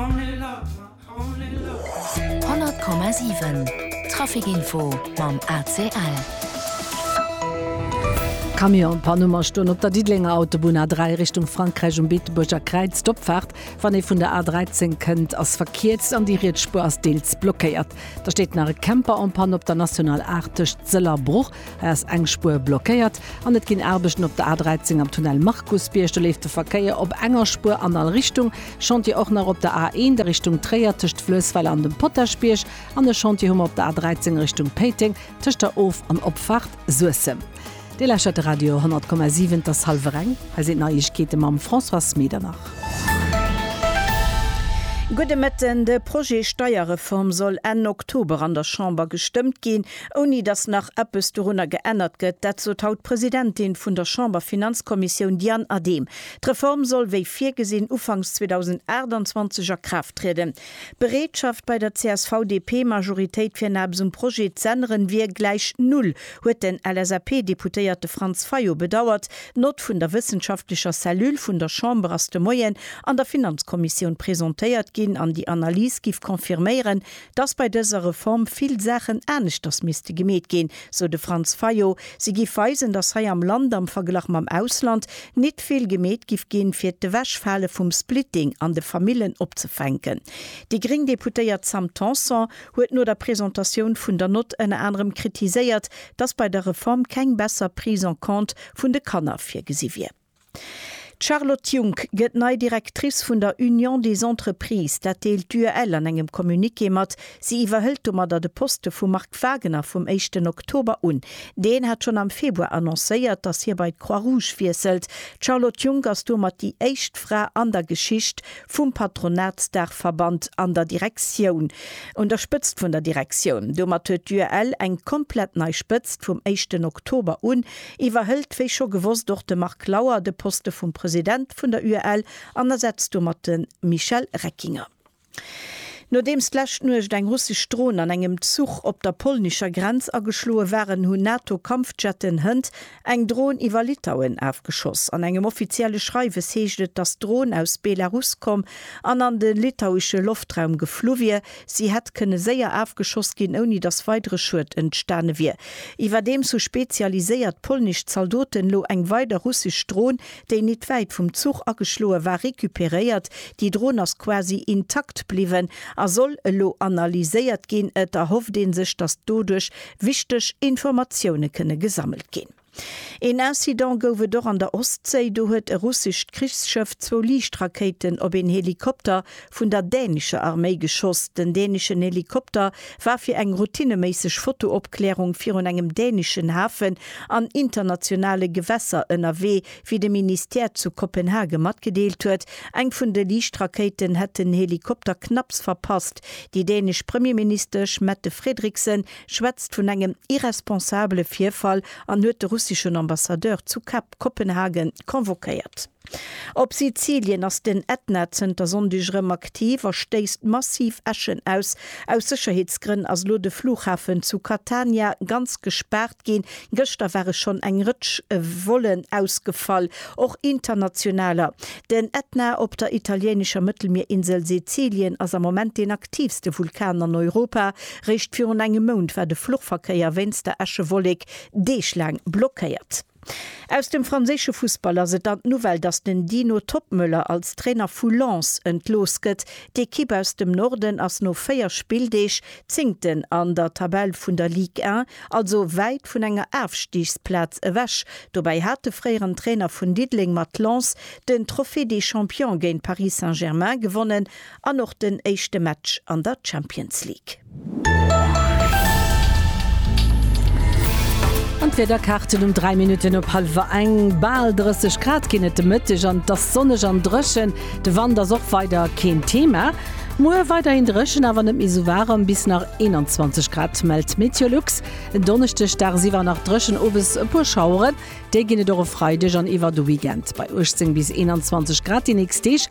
100,7 Trafic Info mam ACL. Camion Panuma stoen op der Diddelenger Autobunn A3 Richtung Frankräich um Beetebuerger Kräiz. D'Opfaart, wann ee vun der A13 kënnt, ass verkierzt an déi riets Spuer ass deels blockéiert. Da steet nach e Camper en Panne op der National 8 tëscht Sëll a Bruch. ass eng Spuer blockéiert an et ginn Aarbechten op der A13 am Tunnel Markusbierg. Do leeft de Verkéier op enger Spuer an all Richtung. Chantier och nach op der A1 a Richtung Tréier tëscht Fluessweiler an dem Potaschbierg an e Chantier hu mer op der A13 a Richtung Péiteng tëscht der Of an Opfaart Suessem. Dir lauschtert de Radio 100,7, et ass hallwer eng. Hei sinn d'Neiegkeete mam Françoise Medernach. Gudde Mëtten. De Projet Steierreform soll Enn Oktober an der Chamber gestëmmt ginn. ouni datt nach eppes dorunner geännert gëtt, dat sot haut d'Presidentin vun der Chamberfinanzkommissioun Diane Adehm. D'Reform soll wéi virgesinn ufanks 2028 a Kraaft trieden. D'Bereetschaft bei der CSV-DP-Majoritéit fir eppes um Projet z'änneren wier gläich null, huet den LSAP-Deputéierte Franz Fayot bedauert. D'Nott vun der wëssenschaftlecher Cellule vun der Chamber ass de Moien an der Finanzkommissioun presentéiert ginn an déi Analys giff confirméieren, dass bei dëser Reform vill Saachen aneschters misste gemeet ginn, sou de Franz Fayot. Si giff weisen, dass hei am Land am Verglach mam Ausland nit vill gemeet giff ginn, fir d'Ewechfale vum Splitting an de Famillen opzefänken. Déi gréng Deputéiert Sam Tanson huet no der Presentatioun vun der Nott ënner anerem kritiséiert, dass bei der Reform keng besser Prise en compte vun de Kanner virgesi wier. D'Charlotte Junck gëtt nei Directrice vun der Union des Entreprises. Dat deelt d'UEL an engem Communiqué mat. Si iwwerhëlt domadder de Poste vum Marc Wagener vum éischten Oktober un. Deen hat schonn am Februar annoncéiert, datt hie bei d'Croix Rouge wiesselt. D'Charlotte Junck ass domat déi éischt Fra an der Geschicht vum Patronatsdaachverband an der Direktioun, un der Spëtzt vun der Direktioun. Domat huet d'UEL eng komplett nei Spëtzt vum éischten Oktober un. iwwerhëlt wéi scho gewosst och de Marc Lauer de Poste vum President vun der UEL an ersetzt domat de Michel Reckinger. Nodeems d'lescht Nuecht eng russesch Dron an engem Zuch op der polnischer Grenz ageschloe waren, hunn NATO-Kampfjetten hënt eng Dron iwwer Litauen afgeschoss. An engem offizielle Schreiwes heescht et, datt d'Dron aus Belarus komm an an de litauesche Loftraum geflu wier. Si hätt kënne séier afgeschoss ginn, ouni datt weidere Schued entstane wier. Iwwerdeems hu spezialiséiert polnesch Zaldoten elo eng weider russesch Dron, déi nit wäit vum Zuch ageschloe war, recuperéiert. Déi Dron ass quasi intakt bliwwen a soll elo analyséiert ginn. Et erhofft ee sech, datt doduerch wichteg Informatioune kënne gesammelt ginn. Een Incident gouf et och an der Ostséi, do huet e russescht Krichsschëff zwou Liichtrakéiten op een Helikopter vun der dänescher Arméi geschoss. Den däneschen Helikopter war fir eng routineméisseg Fotoopklärung virun engem däneschen Hafen an internationale Gewässer ënnerwee, wéi de Ministère zu Kopenhage matgedeelt huet. Eng vun de Liichtrakéiten hätt den Helikopter knapps verpasst. Déi dänesch Premierministesch Mette Frederiksen schwätzt vun engem irresponsabele Virfall an huet de russeschen Ambassadeur zu Kap Kopenhagen convoquéiert. Op Sizilien ass den Ätna zënter Sonndeg erëm aktiv a stéisst massiv Äschen aus. Aus Sécherheetsgrënn ass elo de Flughafen zu Catania ganz gespaart ginn. Gëschter ware schonn eng Rëtsch Vollen ausgefall, och internationaler. Den Ätna op der italieenescher Mëttelmierinsel Sizilien ass am Moment deen aktiivste Vulkan an Europa. Réischt virun engem Mount war de Fluchverkéier wéinst der Äschewollek deeglaang blockéiert. Aus dem franséische Fussball ass et an d'Nouvelle, datt den Dino Toppmöller als Trainer vu Lens entlooss gëtt. D'Ekipp aus dem Norden ass no 4 Spilldeeg Zéngten an der Tabell vun der Ligue 1, also wäit vun enger Afstigsplaz ewech. Dobäi hat de fréieren Trainer vun Diddeleng mat Lens den Trophée des Champions géint Paris Saint-Germain gewonnen An och den éischte Match an der Champions League. An d'Wiederkaarten um 3 Minutten op hallwer eng, Bal 30 Grad ginn et de Mëtteg an et ass sonneg an dréchen. De Wand ass och weider keen Thema. Muer weiderhin dréchen, awer net méi sou waarem, bis nach 21 Grad, mellt d'Meteolux. En Donneschdeg dagsiwwer nach dréchen, owes e puer Schaueren, déi ginn et och e Freideg an iwwer de Weekend. Bei 18 bis 21 Grad déi nächst Deeg.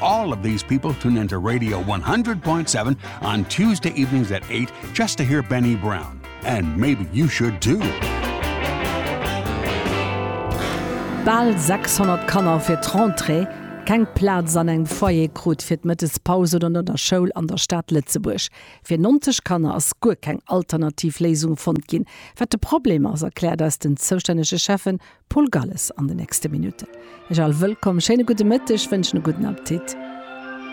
All of these people tune into Radio 100.7 on Tuesday evenings at 8 just to hear Benny Brown. And maybe you should too. Bal 600 Kanner fir d'Rentrée, keng Plaz an engem Foyer krut fir d'Mëttespaus oder no der Schoul an der Stad Lëtzebuerg. Fir 90 Kanner ass guer keng alternativ Léisung fonnt ginn. Wat de Problem ass, erkläert eis den zoustännege Schäffe Paul Galles an den nächste Minutten. Ech all wëllkomm, schéine gudde Mëtteg, wënschen e gudden Appetit.